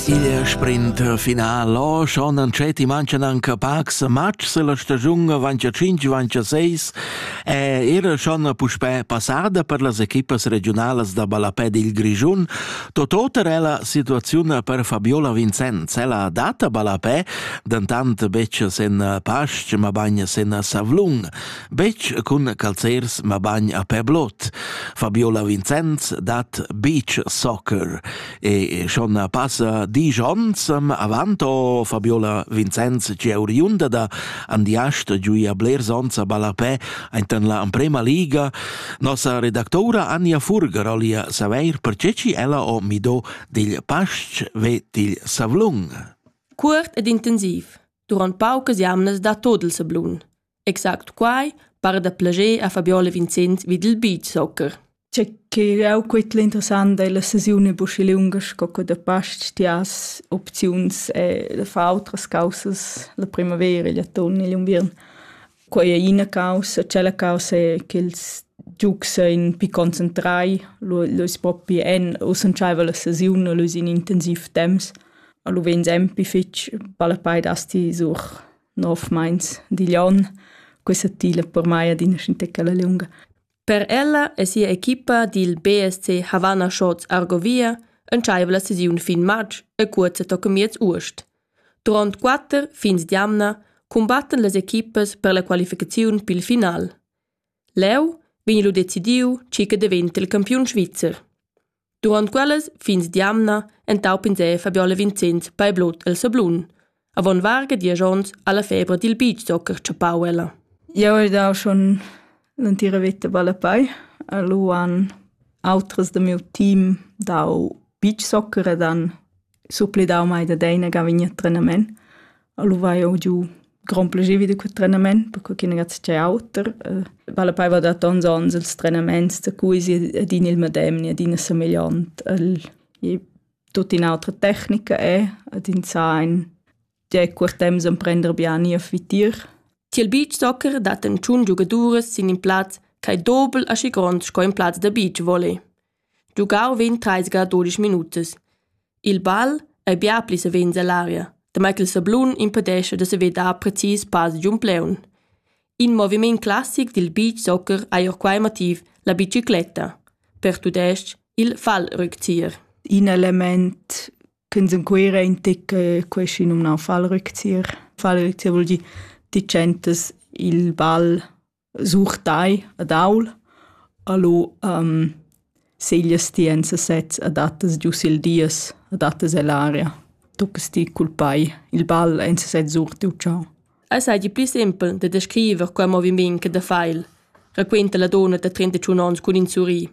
Sia sprinter final o schon an Cetti mancan anche pacs matchs la stagiun avantia 5 avantia 6 e era schon puspè passada per las equipas regionalas da ballapè dil Grischun totota è la situazione per Fabiola Vincenz ella data ballapè dentant betg sen Pastg ma bagn sen Savlung betg cun calzers ma bagn a Peblot Fabiola Vincenz dat beach soccer e schon passa disch ons avanto Fabiola Vincenz che oriunda da Andiast giuia blers ons a ballapè aintan la Emprema Liga nossa redactora Anja Furger olia saveir perché ci ella o mido dil Pastg ve dil Savlung. Cuort ed intensiv, durant paucas jamnas da todel sablun. Exact quai para da plascher a Fabiola Vincent vid il beachsoccer. Tge che jau quitl interessant è la sesiun e buschi lunga sco che da past ti has opziuns e da far autras causas la primavera, l'atun e l'unviern. Quai è ina causa, c'è causa è ch'ils giugs ein pi concentrai, l'uis propi en, u senchaiva la sesiun, l'uis in intensiv temps, a lu vegn sempi fitg, palla pei dasti sur nov meins digl onn, questa tila per mai adina scintecala lunga. Per ella e sia equipa dil BSC Havana Shorts Argovia entscheiva la sesiun fin matg e cuorza tocca miez uost. Duront quatter fins d'jamna cumbattan las equipas per la qualificaziun pil final. Leu vegn lu decidiu chi che daventa il campiun svizzer. Durant quellas fins d'jamna entau pinsè Fabiola Vincenz Paiblot el sablun. Avon varga diesch onns ha la febra dil beachsoccer tschappau ella. Jeu hai dau schon l'entira veta ballapai. Lu han autras da miu team dau beachsoccer ed han supplidau mai da deina gavigna trenament. Allo vai eu giu grand plagier da quel trenament, perché che non c'è auter. Eh, vale poi va da tons ons ils trenaments da cui si ad in il medem ni ad in somigliant al e tutta un'altra tecnica è ad in sein de quartem san prender bien a fitir. Tiel beachsoccer dat en tschun giugaduras sin in plaz ch'ei dobel aschi grond sco in plaz da beach volley. Giugau vegn trais ga dudesch minutas. Il bal ei bia pli savens ell'aria, damai ch'il sablun impedescha da saver dar precis pass giun plaun. In moviment classic dil beach soccer ei ord quei motiv la bicicletta, per tudestg il Fallrückzieher. In element ch'ins en Cuira intic queschi numnau Fallrückzieher. Fallrückzieher vul dir ti tschentas il bal Sur tai ad aul, alò seglias ti enza sez, adattas giu sil dies, adattas ell'aria, tuccas ti cul pei il ball enza sez sur tiu tgau. Ei seigi pli sempel da descriver quei moviment che da feil, raquenta la donna da trentachun onns cun in surrir.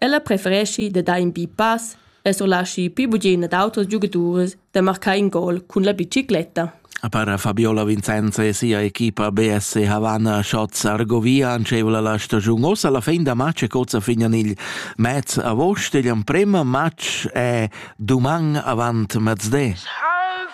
Ella prefereschi da dar in bi pass e surlaschi pli bugen ad auters giugadurs da marcar in gol cun la bicicletta. A para Fabiola Vincenza e sia equipa BSC Havana Schatz Argovia antschevola la stagiun ossa la fin da match e cozza fignan il mez agost igl emprem match è duman avant mezde. Half